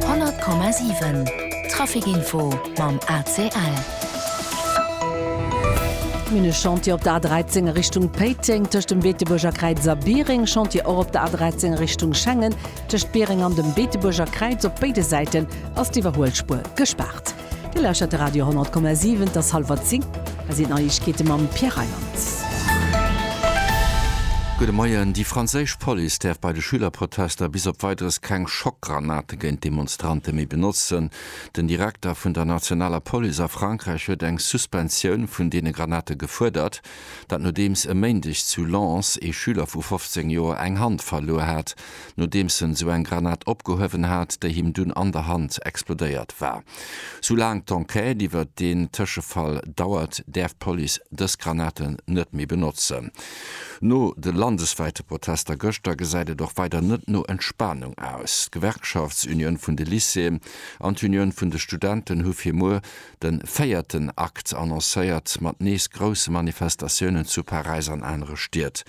100,7 Trafic info mam ACL. Minne Chantier op der A 13 a Richtung Péiteng, tëscht dem Beetebuerger Kräiz a Biereng. Chantier och op der A 13 a Richtung Schengen, tëscht Biereng an dem Beetebuerger Kräiz. Op béide Säiten ass d'Iwwerhuelspuer gespaart. Dir lauschtert de Radio 10,7, et ass hallwer 10, hei sinn d'Neiegkeete mam Pierre Reyland. Gudde Moien, Déi franséisch Police däerf bei de Schülerprotester bis op Weideres keng Schockgranate géint d'Demonstrante méi benotzen. Den Direkter vun der nationaler Police a Frankräich huet eng Suspensioun vun deene Granate gefuerdert. Dat nodeems e Méindeg zu Lens ee Schüler vu 15 Joer eng Hand verluer hat. nodeems en sou eng Granat opgehuewen hat, déi him dunn an der Hand explodéiert war. Soulaang d'Enquête iwwert deen Tëschefall dauert, däerf d'Police dës Granaten net méi benotzen. No de landeswäite Protester gëschter gesäit et och weider net no Entspanung aus. D'Gewerkschaftsunioun vun de Lycéeën an d'Unioun vun de Studenten hu fir muer de véierten Akt annoncéiert, mat nees grousse Manifestatiounen zu Paräis an anere Stied.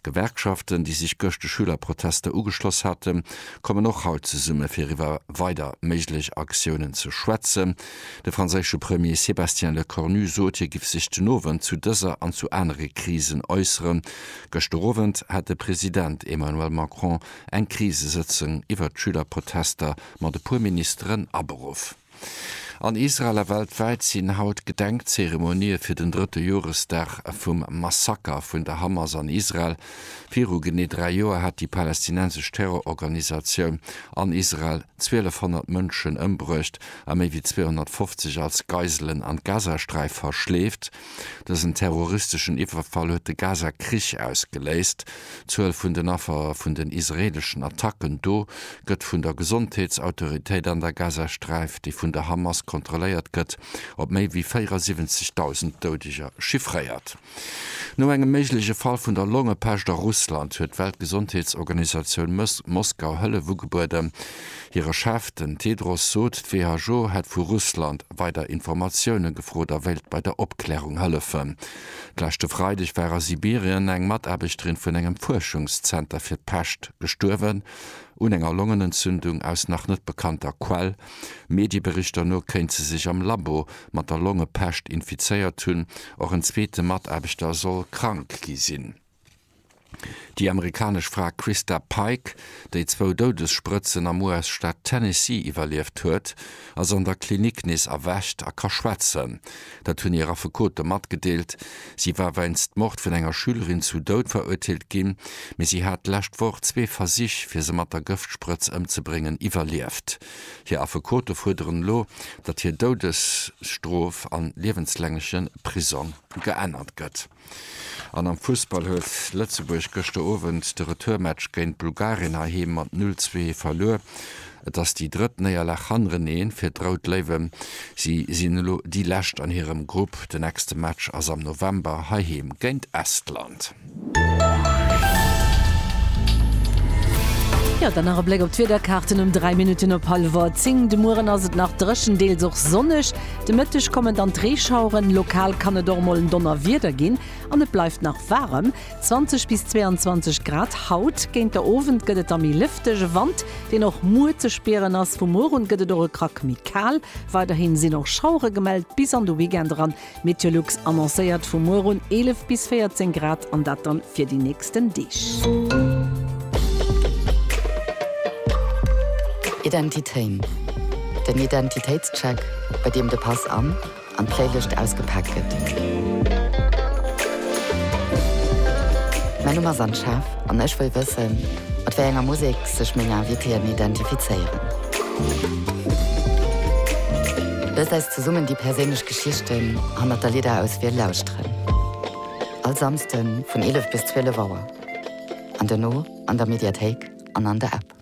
D'Gewerkschaften, déi sech gëscht de Schülerprotester ugeschloss haten, kommen och haut zesumme fir iwwer weider méiglech Aktiounen ze schwätzen. De franséische Premier Sébastien Lecornu sot, hie giff sech den Owend zu dëser an zu anere Krisen äusseren. Gëschter Owend hat de President Emmanuel Macron eng Krisesëtzung iwwer d'Schülerprotester mat e puer Ministeren aberuff. An Israel a weltwäit sinn haut Gedenkzeremonië fir den drëtte Joresdag vum Massaker vun der Hamas an Israel. Viru genee dräi Joer hat déi palästinensesch Terrororganisatioun an Israel 1.200 Mënschen ëmbruecht a méi wéi 250 als Geiselen an d'Gazasträif verschleeft. Dësen terroristeschen Iwwerfall huet de Gaza-Krich ausgeléist. D'Zuel vun den Affer vun den israeeleschen Attacken do gëtt vun der Gesondheetsautoritéit an der Gazasträif, déi vun der Hamas kontrolléiert gëtt, op méi wéi 74.000 Doudeger chiffréiert. No engem méigleche Fall vun der Longepescht a Russland huet d'Weltgesondheetsorganisatioun Moskau Hëllef ugebueden. Hire Chef, den Tedros sot, d'WHO hätt vu Russland weider Informatioune gefrot a wéilt bei der Opklärung hëllefen. D'leschte Freideg war a Sibirien eng Mataarbechterin vun engem Fuerschungszenter fir d'Pescht gestuerwen, un enger Longenentzündung. Aus nach net bekannter Quell, Medieberichter no, kéint se sech am Labo mat der Longepescht infizéiert hunn. Och en zweete Mataarbechter soll krank gi sinn. Déi amerikanesch Fra Christa Pike, déi zwou Doudessprëtzen am US-Staat Tennessee iwwerlieft huet, ass an der Klinik nees erwächt a ka schwätzen. Dat hunn hir Affekote matgedeelt. Si war weinst Mord vun enger Schülerin zum Doud verurteelt ginn, mee si hat d'lescht Woch zwee Versich, fir se mat der Gëftsprëtz ëmzebréngen, iwwerlieft. Hir Affekote fuerderen elo, datt hir Doudesstrof a liewenslängleche Prisong geännert gëtt. An am Fussball huet Lëtzebuerg gëschter Owend de Retourmatch géint Bulgarien heiheem mat 0, 2 verluer. Et ass déi drëtt Néierlag hannereneen fir d'Rout Léiwen. Si sinn elo déi Lescht an hirem Grupp. De nächste Match ass am November heiheem géint Estland. Jo, dann nach e Bléck op d'Wiederkaarten um 3 Minutten op hallwer 10. De Mueren ass et nach dréchen, deels och sonneg. De Mëtteg kommen dann d'Reeschaueren, lokal kann et och mol en Donnerwieder ginn an et bleift nach waarem, 20 bis 22 Grad haut. Géint der Owend gëtt et da méi lëfteg, e Wand, deen och muer ze spieren ass. Vu muer un gëtt et och e Krack méi kal. Weiderhi sinn och Schauere gemellt bis an de Weekend eran. Meteolux annoncéiert vu muer un 11 bis 14 Grad an dat dann fir déi nächst. nächsten Deeg. Identitéin, den Identitéitscheck, bei deem de Pass an an d'Playlëscht ausgepaakt gëtt. Mäi Numm ass Anne Schaaf an ech wëll wëssen, mat wéi enger Musek sech meng Invitéen identifizéieren. Loost eis zesummen déi perséinlech Geschichten hannert der Lidderauswiel lauschteren. All Samsden vun 11 bis 12 Auer. An dono an der Mediathéik an an der App.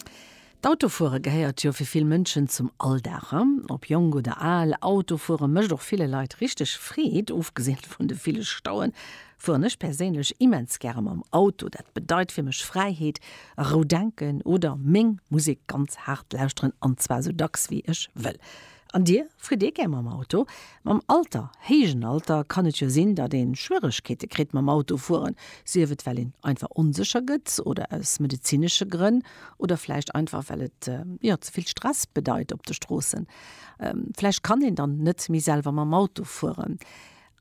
D'Autofuere gehéiert jo fir vill Mënschen zum Alldag. Ob jonk oder al, Autofuere mécht och ville Leit richteg Freed. Ofgesinn vun de ville Stauen, fueren ech perséinlech immens gäre mam Auto. Dat bedeit fir mech Fräiheet, a rou denken oder meng Musek ganz haart lauschteren, an zwar sou dacks wéi ech wëll. An Dir? Fritt Dir gär mam Auto? Mam Alter, héijen Alter, kann et jo sinn, datt ee Schwieregkeete kritt mam Auto fueren, sief et well een einfach onsécher gëtt oder aus medezinesche Grënn oder vläicht einfach well et jo ze vill Stress bedeit op de Stroossen. Vläicht kann een dann net méi selwer mam Auto fueren.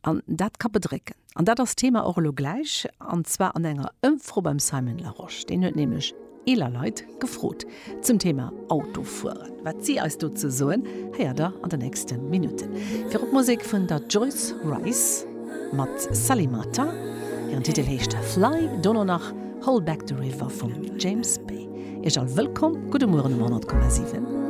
An dat ka bedrécken. An dat ass d'Thema och elo gläich, an zwar an enger Ëmfro beim Simon Larosche. Deen huet nämlech eeler Leit gefrot zum Thema Autofueren. Wat si eis dozou soen, héiert der an den nächste Minutten. Virop Musek vun der Joyce Wrice mat Sally Martin. Hiren Titel heescht Fly. Dono nach Hold Back the River vum James Bay. Iech all wëllkomm. Gudde Mueren um 100,7.